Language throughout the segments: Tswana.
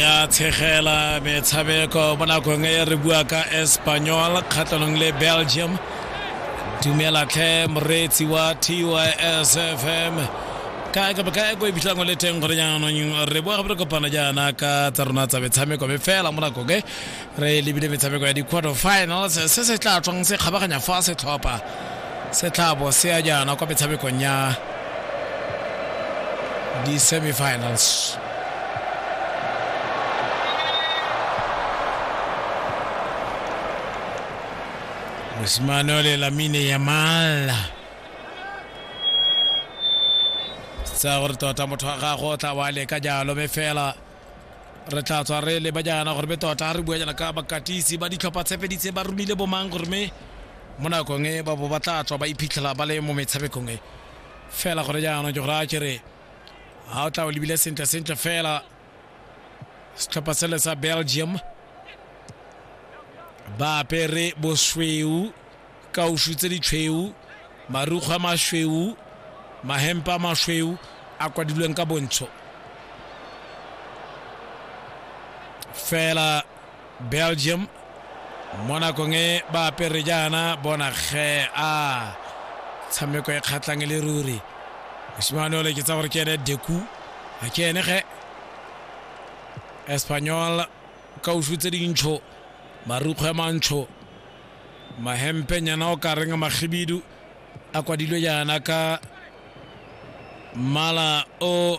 ya tshegela metshameko mo nakong e re bua ka espanyol kgatlhanong le belgium dumelatlhe moreetsi wa tys fm Ka ka ka e ko e fitlhang o le teng gore jaanong re boa gape re kopana jaana ka tsa rona tsa metshameko mme fela mo nako ke re lebile metshameko ya di-quarter finals se se tla tswang se kgabaganya fa setlhopha se tlhabo se ya jaana kwa metshamekong ya di-semifinals mosimane o le lamine yamal tsaya gore tota motho wa gago o tla wa leka jalo me fela re tla tswa re leba jaana gore me tota re bua jaana ka bakatisi ba ditlhopha tshepeditse ba romile bomang gore me mo nakong e ba bo ba tla tswa ba iphitlhela ba le mo metshamekong e fela gore jaanong ke gore a kere ga o tla o lebile sentle sentle fela setlhopha sele sa belgium ba apere bosweu kausu tse ditshweu marukgwe a masweu mahempe a masweu a kwadilweng ka bontsho fela belgium mo nakong e ba apere jaana bona ge a tshameko e kgatlhang e le ruri mosimane ole ke tsa gore ke ene deku a ke ene ge espanyol ka usu tse dintsho marukgo ya mantsho mahempe nyana o ka reng magibidu a kwadilwe jaana ka mmala o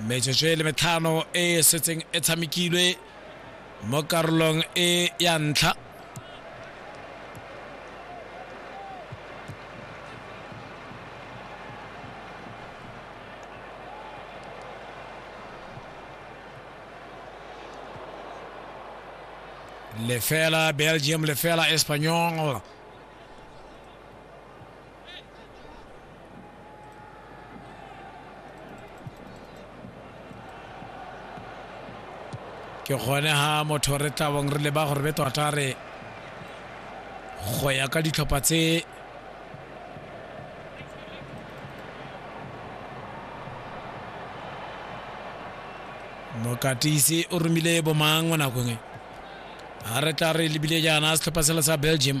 metsotso e le metlhano e e setseng e tshamekilwe mo karolong e ya ntlha lefela belgium lefela espanyol ke gone ha motho re tlabong re leba gore be tota re go ya ka ditlhopha tse mokatisi o romile bomang mo nakong e ga re tla re lebile jaana setlhopha sela sa belgium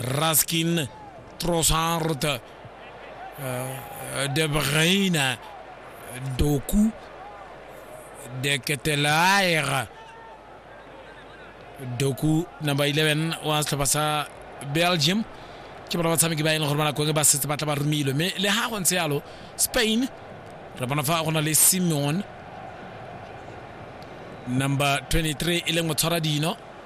Raskin, Trossard, euh, De Bruyne, Doku, De Ketelaere, Doku number 11 wants to pass uh, Belgium ke bona ba tshameki ba e leng gore ba nako e ba setse ba tla ba romilwe mme le ga go ntse yalo Spain re bona fa go na le Simeon number 23 e leng motshwara dino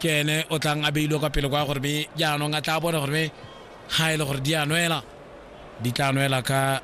ke ene o tlang a beilwe kwa pele kwa gore be jaanong a tla bone gore be ga e le gore di a nwela di tla nwela ka